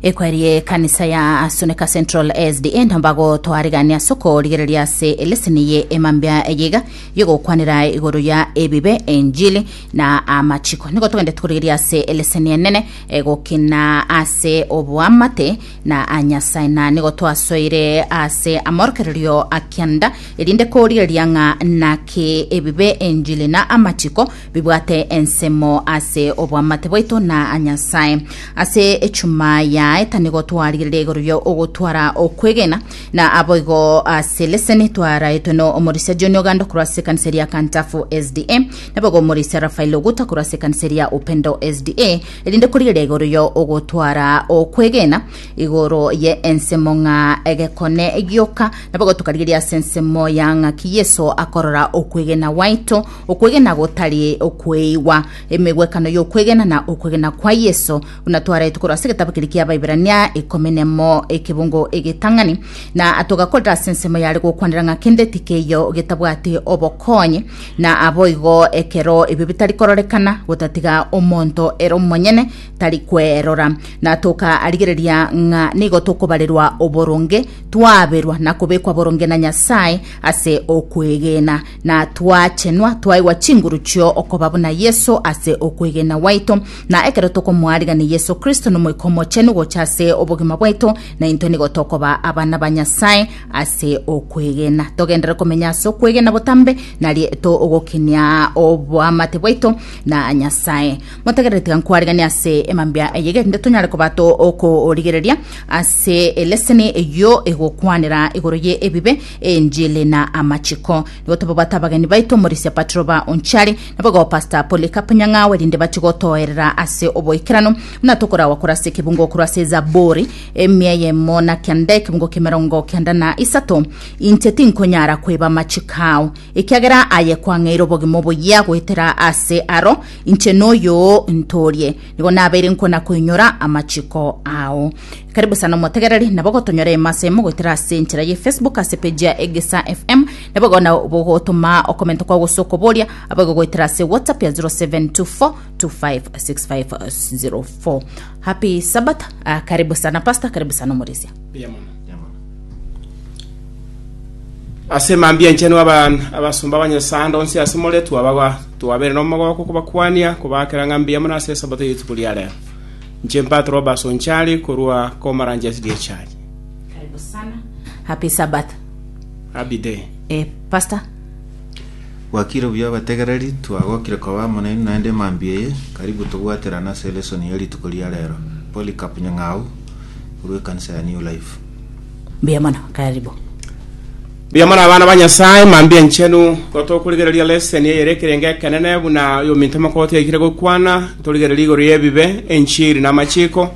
ekwerie ekanisa ya asuneka central sda ntambago twaregania ase okorigereria ase eleseni ye emambia eyeiga yogokwanera igoro ya ebibe enjili na amachiko nigo togende tukorigeria ase eleseni enene egokina ase oboamate na anyasae na nigo twasoire ase amorokererio akianda erinde korigereria ng'a naki ebibe enjili na amachiko bibwate ensemo ase obwamate bwaito na a Nyasae. Ase echuma yaye tanigo twarigereria igoro ria ogotwara okwegena, na aboigo ase leseni twaraetwe no omorisia John Oganda korwa ase ekanisa eria Kantafu SDA, naboigo omorisia Raphael Oguta korwa ase ekanisa eria Upendo SDA, erinde korigereria igoro ria ogotwara okwegena igoro ye ensemo ng'a egekone gioka, naboigo tokarigeria ase ensemo ya ng'aki Yeso akorora okwegena gwaito, Okwegena gotari okweigwa. Emegwekano y'okwegena na okwegena kwa Yeso, buna twarete korwa ase egetabo keria ki'Abaiberania ikomi nemo ekebungo egetang'ani, na togakorera ase ensemo yare gokwanera ng'a kende tikeiyo getabwati obokonyi, na aboigo ekero ebio bitari kororekana, gotatiga omonto ere omonyene tari kwerora. Na tokarigereria ng'a nigo tokobarerwa oboronge, twaberwa na kobekwa boronge na Nyasae ase okwegena. Na twachenwa twaigwa chinguru chio okoba buna Yeso ase okwegena gwaito, na ekero tokomoarigania Yeso Kristo n'Omoika Omochenu gocha ase obogima bwaito, na intwe nigo tokoba abana ba Nyasae ase okwegena. Togendere komenya ase okwegena botambe, narie togokinia oboamate bwaito na Nyasae. Motegerere tiga nkwariganie ase emambia eye, erinde tonyare koba to okorigereria ase eleseni eyio egokwanera igoro ye ebibe, Enjili na amachiko nigo tobabwate abageni baito omorisia Patro ba Onchari nabogo Pastor Polycarp Nyang'awe rinde bache gotoerera ase oboikeranu buna tokoragwa korwa ase ekebungo korwa ase Zaburi emia eyemo na kianda ekebungo kemerongo kianda na isato inche tinkonyara kweba amachiko ao ekiagera aye kwang'eire obogima oboyia goetera ase aro inche noyo ntorie nigo nabeire nkona koinyora amachiko ao Karibu sana omotegereri, nabo gotonyora ime ase ime goetera ase enchera ye Facebook ase page ya Egesa FM, nabo igo na bogotoma okomento kwao gose okoboria, abo igo goetera ase WhatsApp ya 0724256504. Happy Sabbath, ah, karibu sana pastor, karibu sana omorisia. ase mambia enchenu aban abasumba abanyasando onsi ase more twabagwa twabere nomogoko kobakwania kobakera ng'a mbuya mono ase esabato yetuko ria rero Inche Mbat Roberts Onchari korwa Komarange SDA Church. Karibu sana. Happy Sabbath. Happy day. Eh, Pastor. Gwakire buya abategereri, twagokire koba amo nainwe naende emambia eye. Karibu tobwaterane ase elesoni ya rituko ria rero. Polycarp Nyang'au, korwa ekanisa ya New Life. Mbuya mono, karibu. Mbuya mono abana ba Nyasaye, mambia enchenu. Gotokorigereria leseni eyere ekerenge ekenene buna oyominto omokooti aikire gokwana, torigererie igoro y'ebibe, enchiri na amachiko.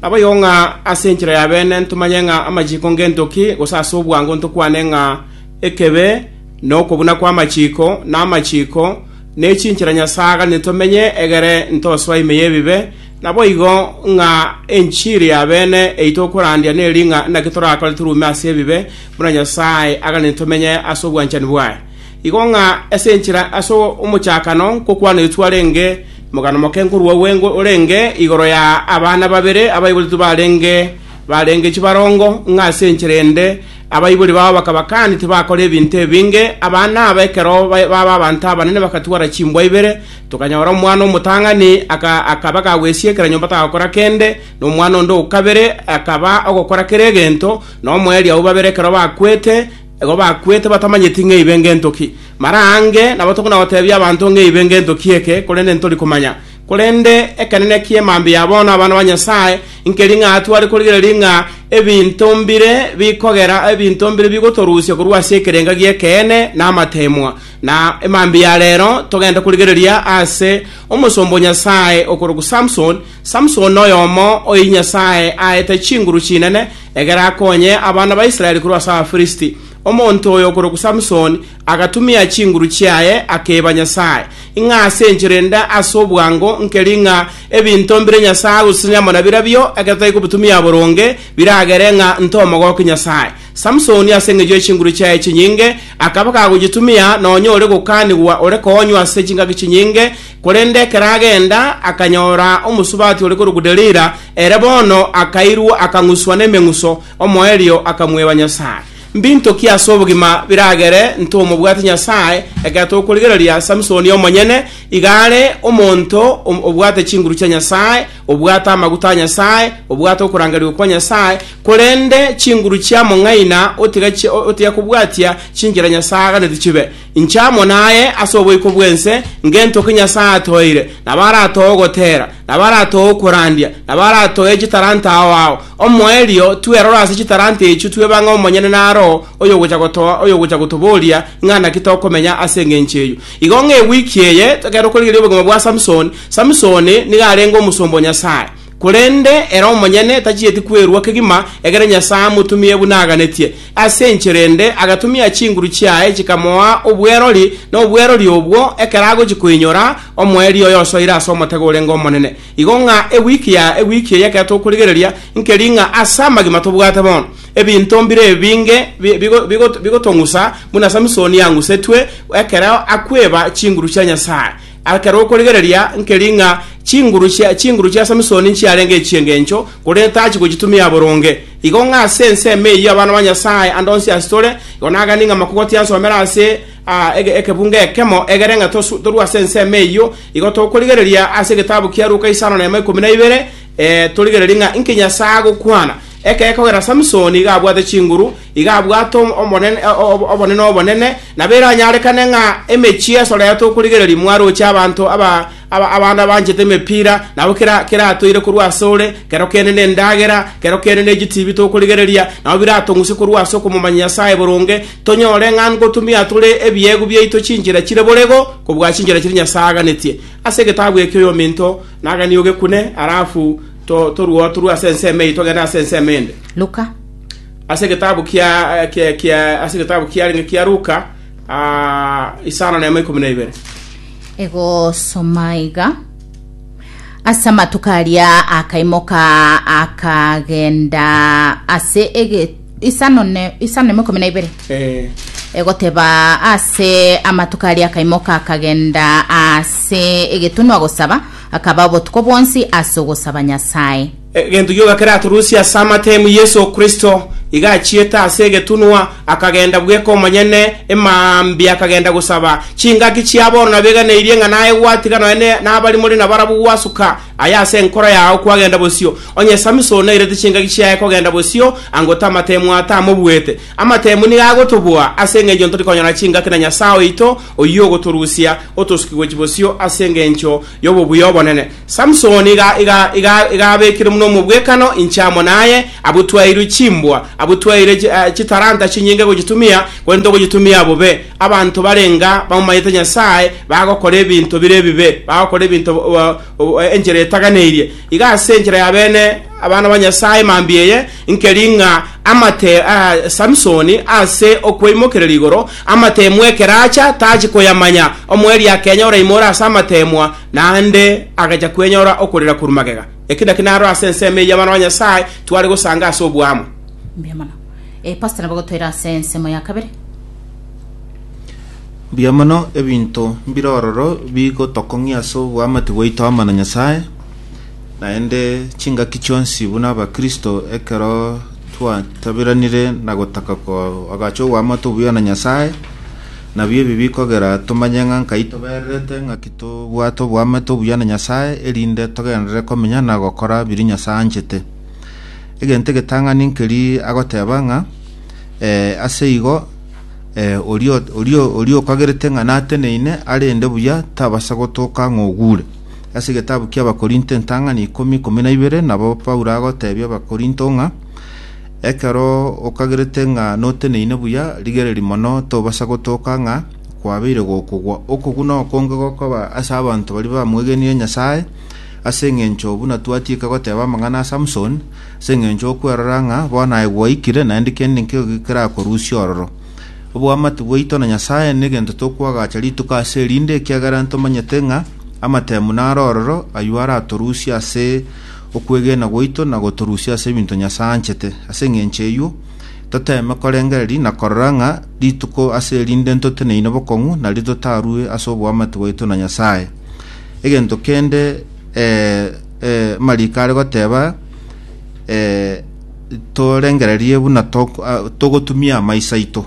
Nabo igo ng'a ase enchera ya bene ntomanye ng'a amachiko ngento ki, gose ase obwango ntokwane ng'a ekebe nokobuna kw'amachiko, na amachiko nechinchera Nyasaye aganete tomenye egere ntosoa ime y'ebibe, Naboigo ng'a enchiri y'abene eyi tokorandia neri ng'a naki torakore toruume ase ebibe, buna Nyasae aganeti tomenye ase obwanchani bwaye. Igo ng'a ase enchera ase omochakano nkokwanetwe arenge mogano moke nkorwa gwengwe orenge igoro ya abana babere abaiboretwe barenge barenge chibarongo, ng'a ase enchera ende abaibori bao bakaba kandi tibakora ebinto ebinge, abana aba ekero baba abanto abanene bagatwara chimbwa ibere Tokanyora omwana omotang'ani akaba gagwesiekera nyomba tagakora kende, na omwana onde o kabere akaba ogokora kera egento, na omoerio abwo babere ekero bakwete, igo bakwete batamanyeti ng'a eibe ngento ki. Mara aange nabo tokona gotebia abanto ng'a eibe ngento ki eke, korende ntori komanya. Korende ekenene kie mambia bono abana ba Nyasae, nkeri ng'a tware korigereria ng'a ebinto mbire bikogera, ebinto mbire bigotorusia korwa ase ekerenga gi'ekeene na amateemwa. Na emambia ya rero togende korigereria ase omosomba o Nyasae okorokwa Samson. Samson noyomo oyi Nyasae aete chinguru chinene egere akonye abana ba Israel korwa ase Abafirisiti. Omonto oyo okorokwa Samson agatumia chinguru chiaye akeba Nyasae, ing'a ase enchera ende ase obwango nkeri ng'a ebinto mbire Nyasae agosesenia amo nabirabio, ekero tari kobitumia boronge, biragere ng'a ntomogokie Nyasae. Samsoni ase engencho ye chinguru chiaye chinyinge akaba kagochitumia nonya ore gokaanigwa ore koonywa ase chingaki chinyinge, korende ekero agenda akanyora omosubati ore korokwa Delila, ere bono akairwa akang'uswa nemeng'uso, omoerio akamweba Nyasae. Mbinto ki ase obogima biragere intwe omobwate Nyasae ekero tokorigereria Samsoni omonyene iga are omonto obwate chinguru chia Nyasae Obwate amaguta a Nyasae, obwate okorangerigwa kwa Nyasae, korende chinguru chia mong'aina otiga chi- o- otiga kobwatia chinchera Nyasae aaganetie chibe. Inche amo naye ase oboiko bw'ense, ngentoke Nyasae atoeire, nabo aratoe ogotera, nabo aratoe okorandia, nabo aratoe chitalanta ao ao. Omoerio, twerore ase chitalanta echio twebang'e omonyene na Roho oyogocha gotoa oyogocha gotoboria ng'a naki tokomenya ase engencho eyio. Igo ng'a ewiki eye, ekero korigereria obogima bwa Samson, Samisoni nigo arenge omosomba o Nyasae, korende ere omonyene tachieti kwerua kegima ekero Nyasae amotumire buna aganetie. Ase enchera ende agatumia chinguru chiaye chikamoa obwerori, na obwerori obwo ekero agochia koinyora omoerio oye osoire ase omotego orenge omonene. Igo ng'a ewiki ya ewiki eye ekero tokorigereria nkeri ng'a ase amagima tobwate bono ebinto mbire ebinge bigotong'usa buna Samisoni ang'usetwe ekero akweba chinguru chia Nyasae. Ekero okorigereria nkeri ng'a chinguru chia chinguru chia Samisoni nchiarenge echi'engencho, korende tachi gochitumia boronge. Igo ng'a ase ensemo eyio abana ba Nyasae ande onsi ase tore, igo nagani ng'a makogoti ansomere ase ah, ege- ekebunga ekemo, egere ng'a tosu- torue ase ensemo eyio. Igo tokorigereria ase egetabu kia Luka isano na emo ikomi na ibere, eh, torigererie ng'a inki Nyasae agokwana, ekero kogera Samisoni iga abwate chinguru, Iga abwate obonene obonene, na biranyarekane ng'a emechie esoretwe okorigereria mwaroche abanto abande abanchete emepira, nabo keratoire korwa asore, kero kende nendagera, kero kende nechitibi tokorigereria, nabo biratong'use korwa ase okomomanya Nyasae boronge, tonyore ng'a ngotumia tore ebiegu biaito chinchera chire borego kobua chinchera chiria Nyasae aganetie. Ase egetabu eke oyominto naganie ogekune, halafu toruoe torue ase ensemo eye togende ase ensemo ende. Luka. Ase egetabu kia kia kia ase egetabu kiarenge kia Luka ah, isano na emo ikomi na ibere. egosoma iga ase amatuko aria akaimoka akagenda ase ege isano ne isano nemo ikomi na ibere Eh, egoteba ase amatuko aria akaimoka akagenda ase egetunwa gosaba akaba obotuko bwonsi ase ogosaba nyasaye Egento gioka keraturusie ase amatemu Yeso Kristo, iga achiete ase egetunwa, akagenda bweka omonyene, emambia akagenda gosaba. Chingaki chia bono nabeganeirie ng'a naye gwatiga nonya nabari more nabarabwo gwasuka, aye ase enkoro yao kwagenda bosio. Onye Samson nairete chingaki chiaye kogenda bosio, ango tamatemu aa tamobuete? Amatemu nigo agotoboa ase engencho ntori konyora chingaki na Nyasae oito, oyio ogotorusia otosukigwe chibosio ase engencho yobobuya obonene. Samsoni igabekire buna omobwekano, inche amo naye, abwo twaeirwe chimbwa, abwo twaeire chitalanta chinyinge gochitumia, korende togochitumia bobe. Abanto barenga bamomanyete Nyasae bagokora ebinto bire ebibe, bagokora ebinto enchera etaganeirie. Iga ase enchera y'abene abana ba Nyasae mambia eye, nkeri ng'a amate a Samsoni ase okweimokerera igoro amateemwa ekero acha, tachi koyamanya. Omoerio akenya oraimoire ase amateemwa, Naende agachia kwenyora okorera korwa magega. Eki nakio naro ase ensemo eyio abana ba Nyasae tware gosanga ase oboamo. Mbuya mono. Eh, pastor nabo gotoira ase ensemo ya kabere. Mbuya mono, ebinto mbire ororo bigotokong'ia ase oboamate bwaito amo na Nyasae, naende chingaki chionsi buna abakristo ekero twataberanire na gotaka koagacha oboamate obuya na Nyasae, Nabio ebi bikogera tomanye ng'a nkai tobererete, ng'aki tobwate oboamate obuya na Nyasae, erinde togenderere komenya na gokora biria Nyasae anchete. Egento egetang'ani nkeri agoteba ng'a, Ee, ase igo, ee, oria, oria, oria okagerete ng'a nateneine arende buya tabasa gotoka ng'a ogure. Ase egetabu ki'Abakorinto entang'ani ikomi, ikomi na ibere, nabo Paulo agotebia Abakorinto ng'a, Ekero okagerete ng'a noteneine buya, rigereria mono tobasa gotoka ng'a kwabeire gokogwa okogwo na okonge gokoba ase abanto baria bamwegenire Nyasae, ase engencho buna twatiika goteba amang'ana a Samson, ase engencho okwerora ng'a bono aye gwaikire, naende kende nkeiyo gikerakorusie ororo. Oboamate bwaito na Nyasae negento tokwagacha rituko ase erinde, ekiagera ntomanyete ng'a amatemu naro ororo ayio aratorusie ase okwegena gwaito na gotorusia ase ebinto Nyasae anchete. Ase engencho eyio, toteeme korengereria na korora ng'a rituko ase erinde ntoteneine bokong'u nario totarue ase oboamate bwaito na Nyasae. Egento kende eh, eh, amariko are goteba eh, torengererie buna tok- ah, togotumia amaiso aito.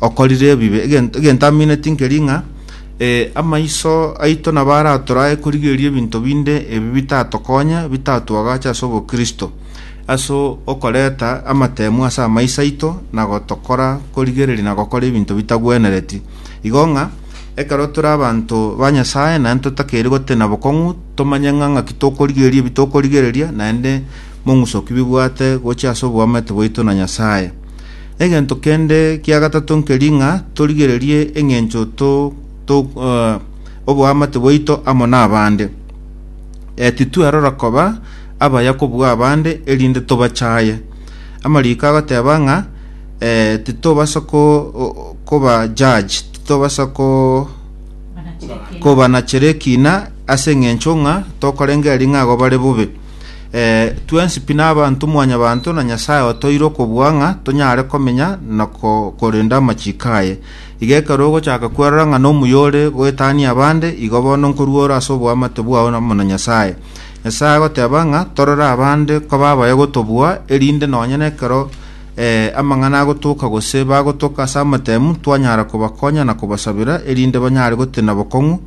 okorire ebibe. Egento egento amineti nkeri ng'a eh, amaiso aito nabo aratorae korigereria ebinto binde ebi bitatokonya, bitatwagache ase obokristo, ase okoreta amatemu ase amaiso aito na gotokora korigereria na gokora ebinto bitagwenereti. Igo ng'a ekero tore abanto ba Nyasae naende totakeire gotenena bokong'u, tomanye ng'a ng'aki tokorigereria ebi tokorigereria, naende mong'uso ki bibwate gochia ase oboamate bwaito na Nyasae. Egento kende kia gatato nkeri ng'a torigererie eng'encho to, to, eh, oboamate bwaito amo n'abande. Eh, titwerora koba abaya kobua abande erinde tobachaye. Amariko agoteba ng'a eh, titobasa ko, o- koba judge, titobasa ko kobanachera ekina ase eng'encho ng'a tokorengeri ng'a igo bare bobe Eh, twensi pi nabanto mwanyabanto, na Nyasae otoire okobua ng'a tonyare komenya na ko- korenda amachiko aye. Iga ekero ogochaka kwerora ng'a nomuyore goetania abande, igo bono nkoruora ase oboamate bwao amo na Nyasae. Nyasae agoteba ng'a torore abande koba abaye gotobua, erinde nonya nekero eh, amang'ana agotoka gose bagotoka ase amatemu, twanyara kobakonya na kobasabera, erinde banyare gotenena bokong'u,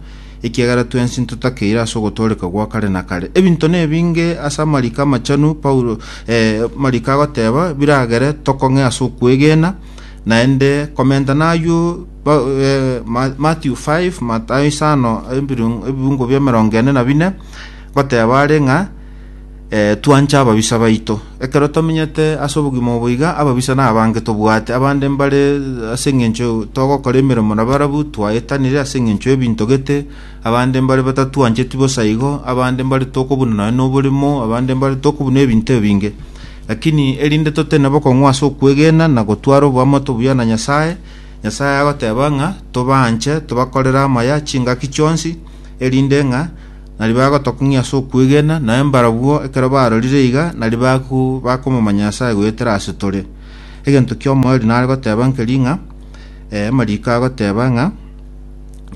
Ekiagera twensi ntotakeire ase ogotooreka gwa kare na kare. Ebinto nebinge ase amariko amachanu Paulo, eh, mariko agoteba biragere tokong'e ase okwegena, naende komenta naywo ba- eh, Ma- Matthew 5, Matayo isano, ebirung- ebibungo bia emerongo ene na bine, goteba are ng'a eh, twanche ababisa baito. Ekero tomenyete ase obogima obo iga, ababisa nabange tobwate, abande mbare ase eng'encho togokora emeremo na barabu twaetanire ase eng'encho y'ebinto gete, abande mbare batatwancheti bosa igo, abande mbare tokobuna nonya noboremo, abande mbare tokobuna ebinto ebinge. Lakini erinde totene bokong'u ase okwegena na gotwara oboamate obuya na Nyasae, Nyasae agoteba ng'a tobaanche, tobakorere amaya chingaki chionsi, erinde ng'a Nari bagotokong'ia ase okwegena, naye mbarabwo ekero barorire iga, nari baku bakomomanya Nyasae goetera ase tore. Egento ki'omoerio nare goteba nkeri ng'a, eh, amariiko agoteba ng'a,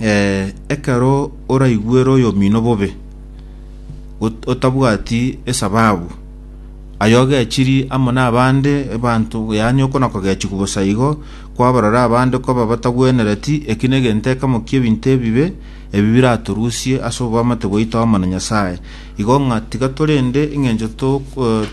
eh, ekero oraigwere oyomino bobe, ot- otabwati esababu, aye ogechiri amo nabande abanto, yaani okona kogechigwa bosa igo, kwabarora abande koba batagwenereti, eki negento ekemo ki'ebinto ebibe, Ebi biratorusie ase oboamate bwaito amo na Nyasae, igo ng'a tiga torende engencho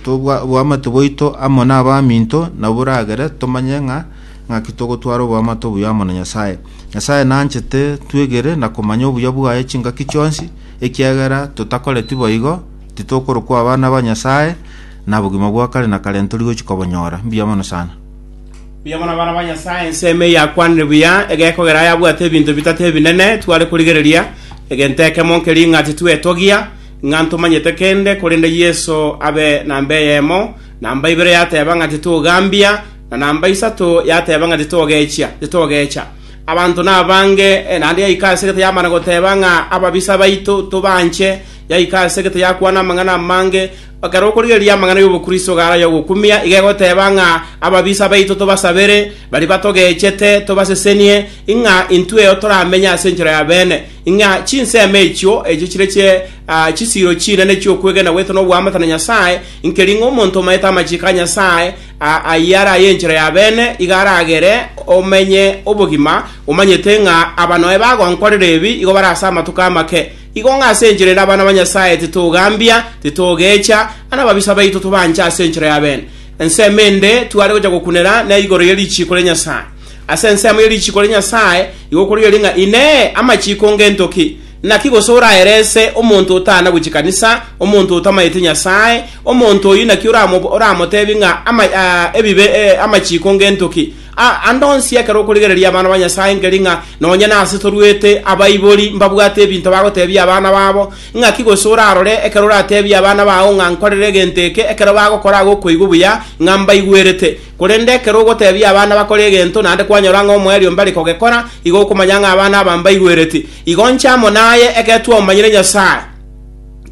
oboamate bwaito amo nabaminto naboragere tomanye ng'a ng'aki togotwara oboamate obuya amo na Nyasae. Nyasae nanchete twegere na komanya obuya bwaye chingaki chionsi, ekiagera totakoreti boigo, titokorokwa abana ba Nyasae, na bogima bwa kare na kare ntori gochia kobonyora. Mbuya mono sana. Buya bono abana ba Nyasae, ensemo eye yakwanire buya egekogera yabwate ebinto bitato ebinene tware korigereria, egento ekemo nkeria ng'a titwetogia, ng'a ntomanyete kende, korende Yeso abe namba eyemo, namba ibere yateba ng'a titogambia, na namba isato yateba ng'a titogechia, titogecha. Abanto nabange, eh, naende yaika ase egete yamana goteba ng'a ababisa baito tobanche, yaika ase egete yakwana amang'ana amange, Ekero okorigereria amang'ana y'obokristo gara y'ogokumia, iga egoteeba ng'a ababisa baito tobasabere, baria batogechete, tobasesenie, ing'a intweo toramenye ase enchera ya beene, ing'a chinsemo echio, echio chire chie ah, chisiiro chinene chi'okwegena gwaito n'oboamate na Nyasae, inkeri ng'a omonto omaete amachiko a Nyasae ah, ayio are aye enchera ya beene, iga aragere omenye obogima, omanyete ng'a abanoe bagonkorera ebi igo bare ase amatuko amake. Igo ng'a ase enchera ere abana ba Nyasae titogambia, titogecha, na ababisa baito tobanche ase enchera y'abeene. Ensemo ende tware gocha gokunera nere igoro ye richiiko ria Nyasae. Ase ensemo ye richiiko ria Nyasae igo korigereria ng'a Inee! Amachiiko ngento ki? Naki gose oraerese omonto otana gochia kanisa, omonto otamaete Nyasae, omonto oyio naki oramotebi ng'a ebibe amachiiko ngento ki? Aa ande onsi ekero okorigereria abana ba Nyasae nkeri ng'a nonye nase toruete abaibori mbabwate ebinto bagotebia abana babo, ng'aki gose orarore ekero oratebie abana bao ng'a nkorere egento eke ekero bagokora agokoigwa buya ng'a mbaigwerete. Korende ekero ogotebia abana bakore egento naende kwanyora ng'a omoerio mbare kogekora, igo okomanya ng'a abana aba mbaigwereti. Igo nche amo naye egetwe omanyire Nyasae.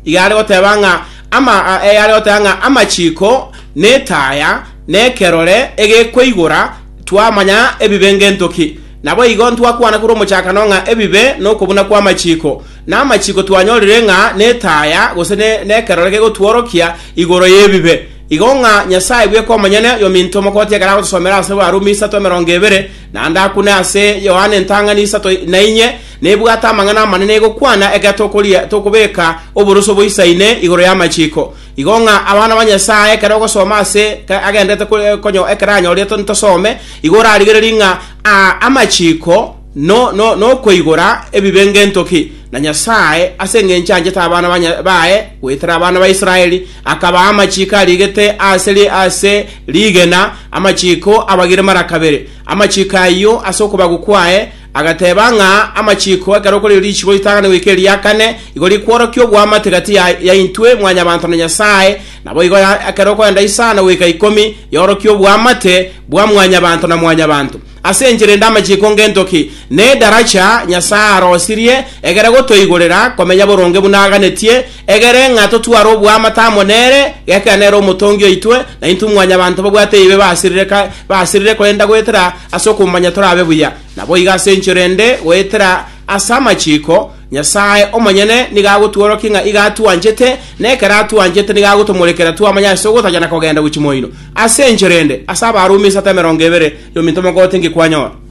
iga are goteba ng'a ama, eh, are goteba ng'a amachiko netaya nekerore egekweigora twamanya ebibe ngentoki. Nabo igo ntwakwana korwa omochakano ng'a ebibe nokobuna kw'amachiko, na amachiko twanyorire ng'a netaya gose ne, nekerore gegotworokia igoro y'ebibe. Igo ng'a Nyasae bweka omonyene yominto omokoti ekero agotosomera ase Barumi isato emerongo ebere, nande akune ase Yohana entang'ani isato nainye, Nebwate amang'ana amanene gokwana ekero tokoria tokobeka oboroso boisaine igoro y'amachiko. Igo ng'a abana ba Nyasae ekero ogosoma ase agenderete konyo ekero anyorire ntosome, igo orarigererie ng'a amachiko nokoigora ebibe ng'entoki, na Nyasae ase engencho anchete abana baye goetera abana ba Israeli, akabaa amachiko arigete ase rigena, amachiko abagire mara kabere. Amachiko ayio ase okobagwa kwaye, Agateba ng'a amachiiko ekero kore richiiko ritang'ani goika eria kane, igo rikworokia oboamate gati yaintwe Mwanyabaanto na Nyasae, naboigo ekero okoenda isano goika ikomi, yorokia oboamate bwa Mwanyabaanto na Mwanyabaanto. Ase enchera ende amachiiko ng'entoki nedaracha Nyasae arosirie egere gotoigorera komenya boronge buna aganetie Egere ng'a totware oboamate amo nere, gekera nere omotongi oitwe, na intwe mwanyabanto babwate eibe basirire ka basirire korenda goetera ase okomomanya torabe buya. Naboigo ase enchera ende goetera ase amachiko, Nyasae omonyene nigo agotworokia ng'a iga atwanchete, na ekero atwanchete nigo agotomorekera twamanya ase ogotachana na kogenda gochia moino. Ase enchera ende, ase abaarumi esato emerongo ebere, yominto mogotengia kwanyora.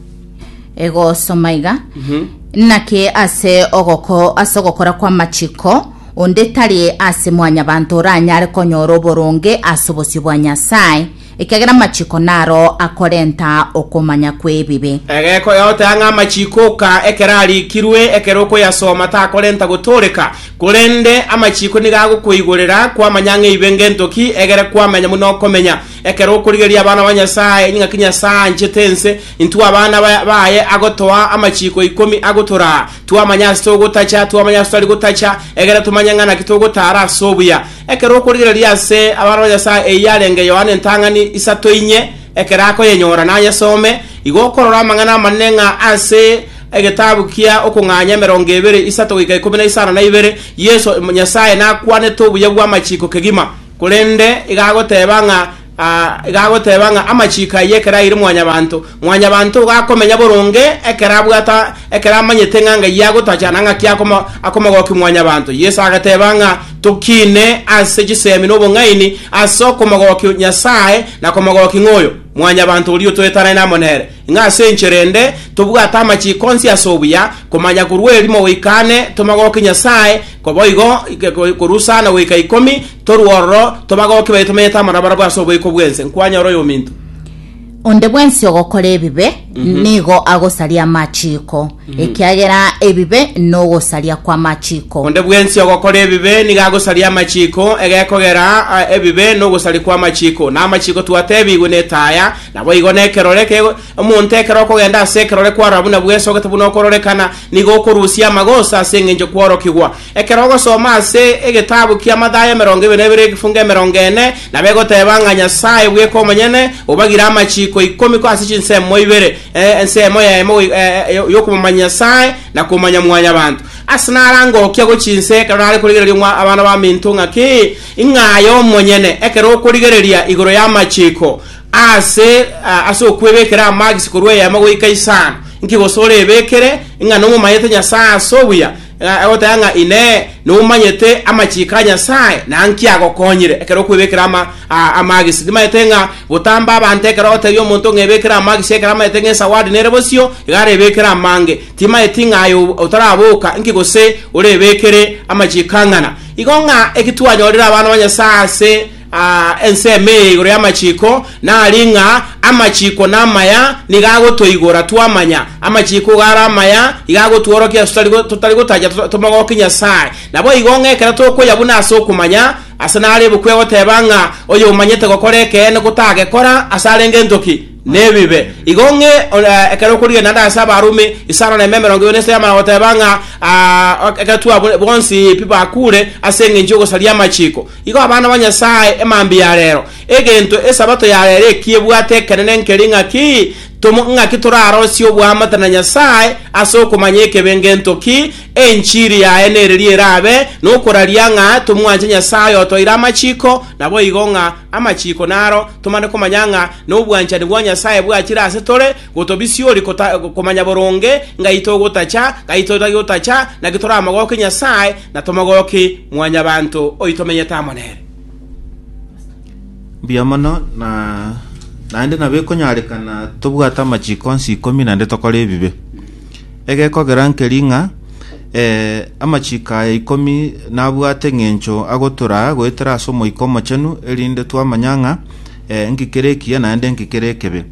egosoma iga naki ase ogoko ase ogokora kw'amachiko onde tari ase mwanyabanto oranyare konyora oboronge ase obosio bwa Nyasae, ekiagera amachiko naro akorenta okomanya kw'ebibe. Egeko yagotea ng'a amachiko oka ekero arikirwe, ekero okoyasoma takorenta gotooreka, korende amachiko nigo agokoigorera kwamanya ng'a eibe ngento ki, egere kwamenya buna okomenya. Ekero okorigereria abana ba Nyasae ng'aki Nyasae anchete ense, intwe abana ba- baye agotoa amachiiko ikomi agotoraa, twamanya ase togotacha, twamanya ase totari gotacha, egere tomanye ng'a naki togotaara ase obuya. Ekero okorigereria ase abana ba Nyasae eyio yarenge Yohana entang'ani isato inye, ekero akoyenyora nayesome, igo okorora amang'ana amanene ng'a ase egetabu kia okong'anya emerongo ebere isato goika ikomi na isano na ibere, Yeso, Nyasae nakwanete obuya bw'amachiiko kegima. Korende igagoteba ng'a igagoteba ng'a amachiiko ayio ekero aire mwanyabanto, mwanyabanto igo akomenya boronge ekero abwate ekero amanyete ng'a ng'ai agotacha na ng'aki akomogokia mwanyabanto. Yeso agateba ng'a tokiine ase chisemi na obong'aini ase okomogokia Nyasae na komogokia ng'a oyo mwanyabanto oria otwetanane amo nere. Ng'a ase enchera ende tobwate amachiko onsi ase obuya, komanya korwa erimo goika ane, tomagokie Nyasae, naboigo korwa sana goika ikomi, torue ororo, tomagokie baye tomenyete amo nabarabwo ase oboiko bw'ense. Nkwanyora oyominto. Onde bwensi ogokora ebibe nigo agosaria amachiko, ekiagera ebibe nogosaria kw'amachiko. Onde bwensi ogokora ebibe nigo agosaria amachiko, egekogera ah, ebibe nogosaria kw'amachiko. Na amachiko twatebigwe netaya, Naboigo nekerore eke, omonto ekero okogenda ase ekerore kwarora buna bwesogete buna okororekana, nigo okorusia amagoso ase engencho kworokigwa. Ekero ogosoma ase egetabu kia Mathayo emerongo ebere nebere egefungo emerongo ene, nabegoteba ng'a Nyasae bweka omonyene obagire amachiko ikomi korwa ase chinsemo ibere, eh, ensemo yaimo eh, yokomomanya Nyasae na komanya mwanyabanto. Ase narange okia gochinse ekero nare korigereria omwa abana baminto ng'aki, ing'aye omonyene ekero okorigereria igoro yamachiko, Aase ase okwebekera amagisi korwa eema goika isano, inki gose orebekere ng'a nomomanyete Nyasae ase obuya, agoteba ng'a Inee, nomanyete amachiko a Nyasae, na nki agokonyire ekero okwebekera amagisi? Nimanyete ng'a botamba abanto ekero ogotebia omonto ng'a ebekere amagisi ekero amanyete ng'a esawadi nere bosio, iga arebekere amange. Timanyeti ng'a aye otaraboka, inki gose orebekere amachiko ang'ana? Igo ng'a eki twanyorire abana ba Nyasae ase Aa, ensemo eye igoro y'amachiko nari ng'a amachiko namaya nigo agotoigora twamanya amachiko igo are amaya, igo agotworokia ase totari go- totari gotacha to- tomogokie Nyasae. Naboigo ng'a ekero tokoya buna ase okomanya, ase nare ebuku egoteba ng'a oyomanyete gokora ekeene gotagekora ase arenge entoki nebibe. Igo ng'e eh, ekero okorigena ande ase Abarumi isano na ime emerongo ibere na esano yamana goteba ng'a aa, ekero twabure bonsi pi bakure ase engencho y'ogosaria amachiko. Igo abana ba Nyasae emambia ya reero, egento Esabato ya reero eki ebwate ekenene nkeri ng'aki tomo, ng'aki torarosie oboamate na Nyasae ase okomanya ekebe ngento ki, enchiri yaye neriria erabe nokoraria ng'a tomwanche Nyasae oyotoire amachiko, naboigo ng'a amachiko naro tomane komanya ng'a nobwanchani bwa Nyasae bwachire ase tore, Gotobisiori kota, komanya boronge ngai togotacha, ngai totagi gotacha, naki toramogoki Nyasae, na tomogoki mwanyabanto oyi tomenyete amo nere. Mbuya mono, na naende nabo ekonyarekana tobwate amachiko onsi ikomi naende tokore ebibe. Egekogera nkeri ng'a eh, amachiko aya ikomi nabwate eng'encho agotoraa goetera ase Omoika Omochenu, erinde twamanya ng'a eh, nki kere ekiya naende nki kere ekebe.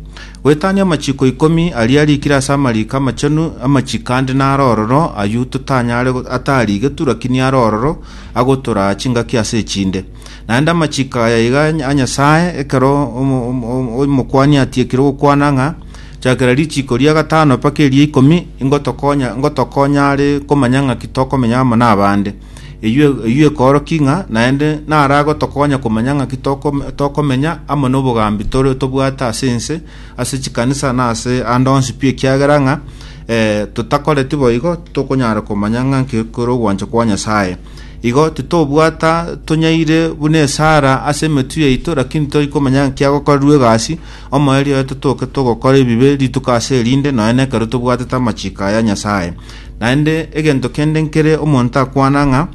Goetania amachiko ikomi aria arikire ase amariiko amachenu amachiko ande naro ororo, ayio totanyare go- atarigetwe, rakini aro ororo agotoraa chingaki ase echinde. Naende amachiko aya iga a Nyasae, ekero omo- omo- omo- omokuani atiekire ogokwana ng'a, Chakera richiko ria gatano mpaka eria ikomi, ingotokonya ngotokonya are komanya ng'aki tokomenya amo nabande. Eyio eyio ekoorokia ng'a naende naragotokonya komanya ng'aki tokome- tokomenya amo nobogambi tore tobwate ase ense, ase chikanisa na ase ande onsi pi ekiagera ng'a eh, totakoreti boigo titokonyara komanya ng'a nki kore ogwancha kwa Nyasae. Igo titobwata tonyaire buna esara ase emetwe yaito, lakini tori komanya ng'aki agokorerwa egasi, omoerio oye totoke togokora ebibe rituko ase erinde, nonya nekero tobwatete amachiko aya Nyasae. Naende egento kende nkere omonto akwana ng'a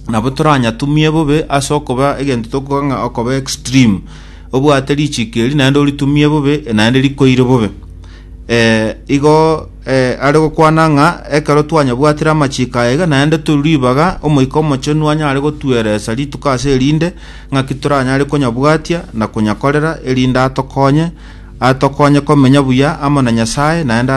nabo toranyatumie bobe ase okoba egento tokoba ng'a okoba extreme obwate richiko eri naende oritumie bobe naende rikoire bobe eh, igo eh, are gokwana ng'a ekero twanyabwatire amachiko aya iga naende turi ribaga omoika omochenu anyare gotueresa rituko ase erinde ng'aki toranyare konyabwatia na konyakorera erinde atokonye atokonye komenya buya amo na nyasaye naende ato-